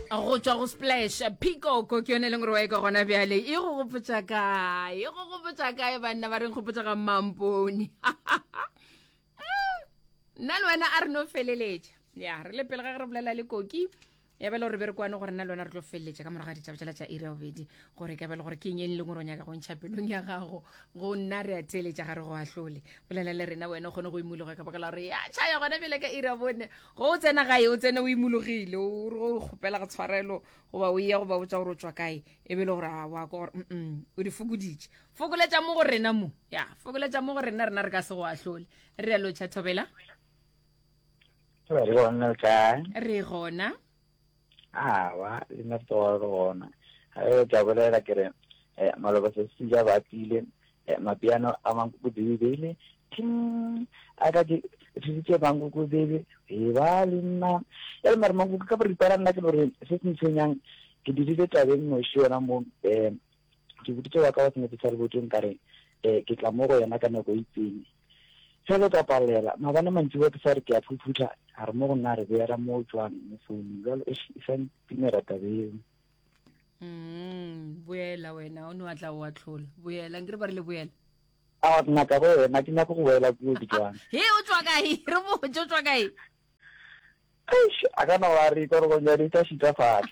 go tšwa go splash peacock ke yone e leng gore wa e ka gona bjale e go gopotsa kae e go gopotsa kae banna ba reng gopotsa ga mampone nna le wena a re no feleletša ya re le pele ga ge re bolela le koki ya bele gore be re kwane gore nna le wena re tlo feleletša ka morago ga ditšaba tsela tša area obedi gore ka bele gore ke eng e leng gore o nyaka go ntšha pelong ya gago go nna re a theeletša gare go ahlole bolela le rena wena o kgone go imologa ka baka la gore ya tšhaya gona bele ka area bone Ge o tsena gae, o tsene o imologile, o re ge o kgopela go tshwarelo goba o eya go ba botša gore o tšwa kae, e be e le gore a wa kwa gore mm o di fokoditše. Fokoletša mo go rena mo. Ya, fokoletša mo go rena, rena re ka se go ahlole. Re realo, Cha Thobela? Re gona, o kae? Re gona. Awa, le nna ke tloga ke bona. Ge ke a bolela ke re, eh, maloba sesi ja ba tile, eh, mapiano a mankukubebele, ting, a ka ke thusitše mankukubebe, e ba le nna. Ya le mare mankuku ka boripana nna ke no re se se ntshwenyang, ke dudile tabeng noši yona mo, eh, ke boditše wa ka wa senetša sa leboteng ka re, eh, ke tla mo go yena ka nako e itseng. Ge le ka palela, maabane mantšiboa ke sa re ke a phuphutha, a re mo go nna a re beela moo tšoang mo founung. Bjalo, eish, e sa ntumela taba yeo. Mm, boela wena, o ne wa tla o atlhola. Boela, nkere ba re le boela. A wa nna ka go wena, ke nyako go boela kuo ke tšoang. He, o tšwa kae? Re botse, o tšwa kae? Eish, a ka no ba re ikorogong ya di tla šita fale.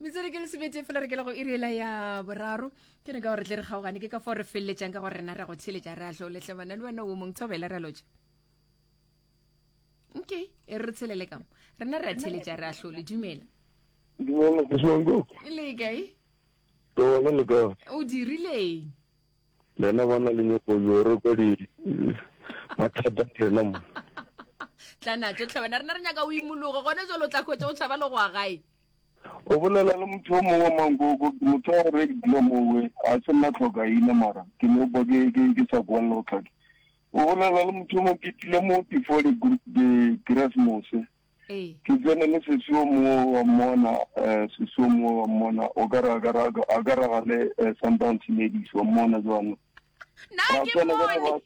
metsere ke le sebete fela re ke le go irela ya boraro ke ne ka gore tle re kgaogane ke ka fo re feleletsang ka gore rena re go tsheletša re a tlo letlebana le wena o mong thobele re lotša okay e re tshelele kamo rena re a tsheletša re a tlo le dumela le kae o dirileng Lena bana le nyoko yo re kwa di mathata rena mo. Tla na tsotlhe wena rena re nyaka o imologe gone jo lo tla khwetse o tshaba le go a gae. O bolela le motho o mongwe mankoko motho a re ke dula mo we a se nna tlhoka ina mara ke no bo ke ke ke sa kwa lo tlhake. O bolela le motho mo ke tlile mo before the group the Christmas. Ee. Ke tsene le sesi o mongwe wa mmona, sesi o mongwe wa mmona, o ka re a ka re a ka raga le Sundowns Ladies, wa mmona jwalo. Na ke mmone.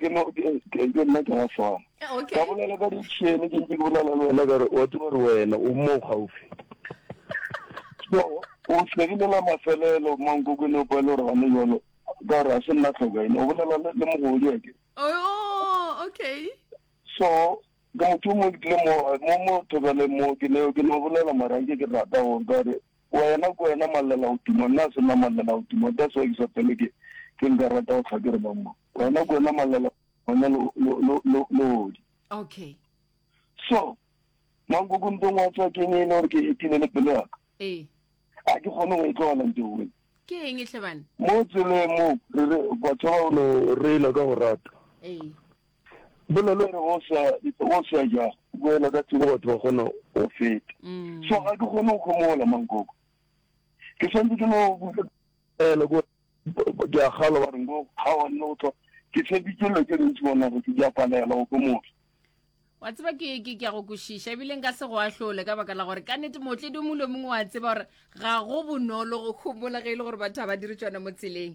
Ke no ke ke nna ke swana. Okay. Ka bolela ka ditšhene ke ntse ke bolela le wena ka re wa tseba re wena o mo gaufi. So o segile la mafelelo mankoko ne o pa le re gane jwalo ka re a se nna tlhoka ene o bolela le mogodi ake. Oh, okay. So, ke motho yo mongwe ke tlile mo, mo, mo thobeleng mo, ke ne, ke no bolela mara nke ke rata go ka re, Wena, ke wena Mallela o tuma, nna se nna Mallela o tuma, that's why ke sa fele ke, ke nka rata go tlha ke re ba mo, Wena, ke wena Mallela, wena lo, lo, lo, lo, lodi. Okay. So, mankoko ntong wa tswa keng e le gore ke etile le pelo yaka? Ee. A ke kgone go e tlogela nte o ke eng e tlhebane mo tseleng mo re re batho ba no reela ka go rata ee Bolelo e re go sa go sa ja go ela ka tsebo batho ba kgona go feta. Mm. So ga ke kgone go kgomola mankoko. Ke santse ke no ela go ke a galo ba reng go ga wa nne go tlo ke se bitšelo ke rentsi bona go ke ja palela go kgomola. wa tseba ke ke ke go kwešiša ebile nka se go ahlole ka baka la gore ka nete mootledi o mongwe le mongwe wa tseba gore ga go bonolo go kgomola ge e le gore batho ga ba dire tsona mo tseleng